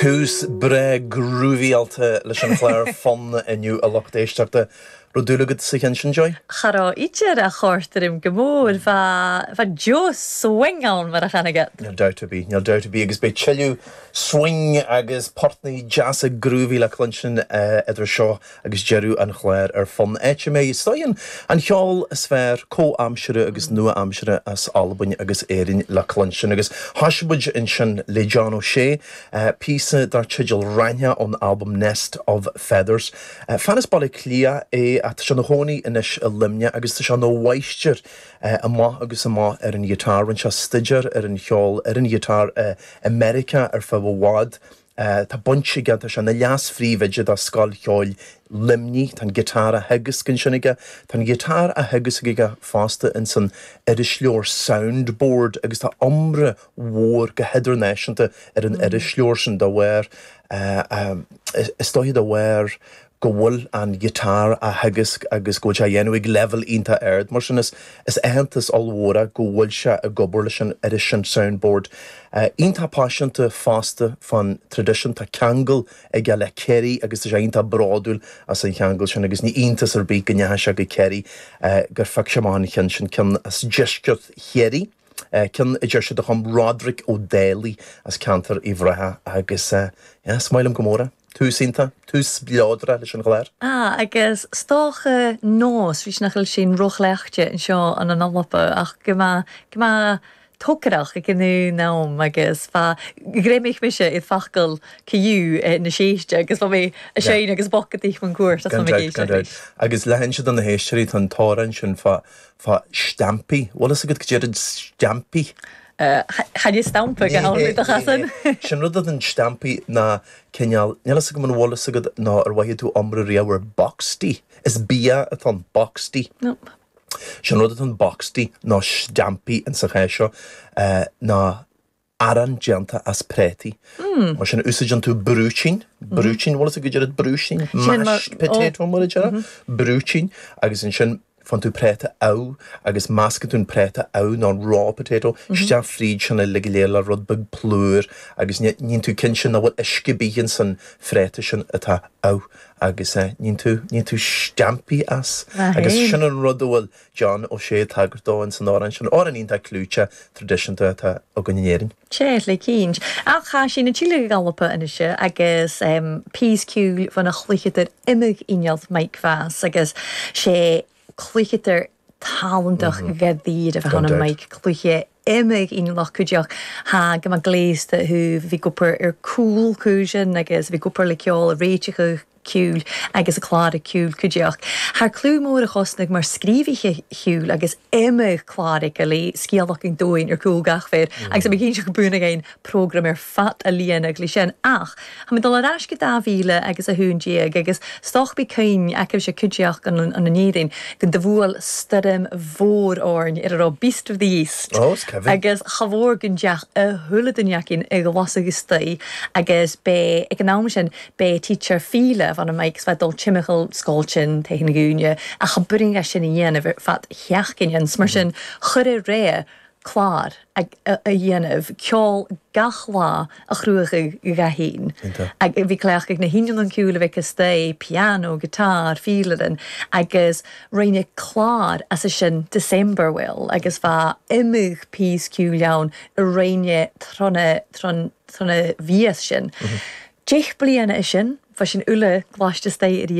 Tús breá grúvaíáilte leis an chlár Fonn inniu a lucht éisteachta. Raibh dúil agat sa cheann sin, Joy? Cha robh idir ach chòrd e rium gu mòr, bha deagh swing ann mar a chanadh iad! Níl dabht ar bith, níl dabht ar bith agus beidh tuilleadh swing agus portnaí deasa groovy le cluinstin idir seo Agus deireadh an chláir ar fonn áit a mbeidh scoth an cheoil is fearr comhaimseartha agus nua-aimseartha as Albain agus Éirinn le cluinstin. Agus thosaigh muid ansin le John O'Shea, píosa dar teideal Raithneach ón albam Nest of Feathers. Fear as Baile Átha Cliath é ach tá sé ina chónaí anois i Luimneach agus tá sé ina mháistir amach agus amach ar an ghiotár. Rinne sé staidéar ar an cheol ar an ghiotár i Meiriceá ar feadh i bhfad. Tá baint ag an, tá sé ina leas-phríomhoide do Scoil Cheoil Luimnigh, tá an guitar á theagasc ansin aige. Tá an guitar á theagasc aige fosta insan irisleabhar Soundboard agus tá iomrá mhór go hidirnáisiúnta ar an irisleabhar sin. Dá bharr, is dóiche dá bharr go bhfuil an guitar á theagasc agus go bhfuil sé á dhéanamh ag leibhéal iontach ard. Mar sin, is aitheantas ollmhór é go bhfuil sé ag obair leis an iris, an Soundboard. Iontach paiseanta fosta fán traidisiún. Tá ceangal aige le Kerry agus tá sé iontach bródúil as an cheangal sin agus ní iontas ar bith go ndeachaigh sé go Kerry, gur phioc sé amach an cheann sin, ceann as deisceart Chiarraí, ceann a deir siad a chum Roderick O'Daly as ceantar Uíbh Ráthaigh agus, yeah, is maith liom go mór é. Tús iontach, tús spleodrach leis an chlár. Ah, agus 's dòcha nòs ris nach eil sinn ro chleachdte an seo ann an Alba ach gu math, gu math togarrach aig an aon àm agus bha, ghreimich mise air facail co-dhiù na sèiste agus bha mi a' seinn agus bocadaich mun cuairt. Gan aon dabht, gan dabht. Agus le hinse do na héisteoirí, tá an t-amhrán sin fá Fá steaimpí. Bhfuil fhios agat goidé an steaimpí? Chaith mé stampa go ham i do chasan. Is é an rud é an steaimpí ná cineál, níl fhios agam an bhfuil fhios agat nó ar mhothaigh tú iomrá riamh ar boxty. Is bia atá ann, boxty. Is é an rud atá ann, boxty, nó steaimpí, ins an chás seo, ná arán déanta as préataí. Mar sin úsáideann tú brúitín, brúitín, bhfuil fhios agat goidé brúitín? Mashed potato mar a déarfá, brúitín agus ansin faigheann tú préata amh agus meascann tú an préata amh nó raw potato isteach fríd sin uilig go léir le rud beag plúr agus níonn tú cinnte nach bhfuil uisce ar bith insan phréata sin atá amh agus níonn tú, níonn tú steaimpí as agus sin an rud a bhfuil John Ó Sé ag tagairt dó in San Árainn sin, Árainn iontach clúite, traidisiúnta atá againn in Éirinn. Téigh le cinnt. Ach chaith sí na tíortha go gallapa anois agus peas ciúil fan a chloícheadar imigh i ngealt Mike Mheas agus sé cloícheadar talantach go díreach a tháinig Mike cluiche Imigh i ngluth cuideach. Thagaim a gléasta thú. Bhí cupar ar cúl cúiseann agus bhí cupar le ceol a réiteach a shiúl agus a clár ag ciúl cuideach. Thar clú mór a chosnaigh mar scríobhaithe shiúil agus imigh clár ag Gilly, scéal achan dúinn ar cúl gach fir agus imigh a inseacht buan againn. prógraim ar fad a líon eaglais sin ach tá mé ag dul ar ais go 2011 agus stoc bí coin acu sé cuideach an an an Éirinn go do bhuail stoirm mhór orainn ar a raibh Beast of the East Oh is Kevin. agus cha mhór go ndeach a shula do ndeach cinn ag bhlas agus stoí agus bé ag an am sin bé teacher Fíle bhana Mike is bheith dul timcheall scoil tinn taobh thiar na gcúinne ach cha b'fhuirinn dhá sin a dhéanamh ar fad theach cinn ins mar sin chuir a ré clár a dhéanamh, ceol gach lá a chruachadh go gcaithfinn. Iontach. Bhí glaoch ag na hinion an ceoil a bheith astoigh, piano, guitar, fílerin, agus rinneadh clár as a sin, December Will, agus bha iomdha píos ceoil ann a rinneadh trna trna mhias sin. Deich bliana a sin, bha sin uile glaiste astoigh arís.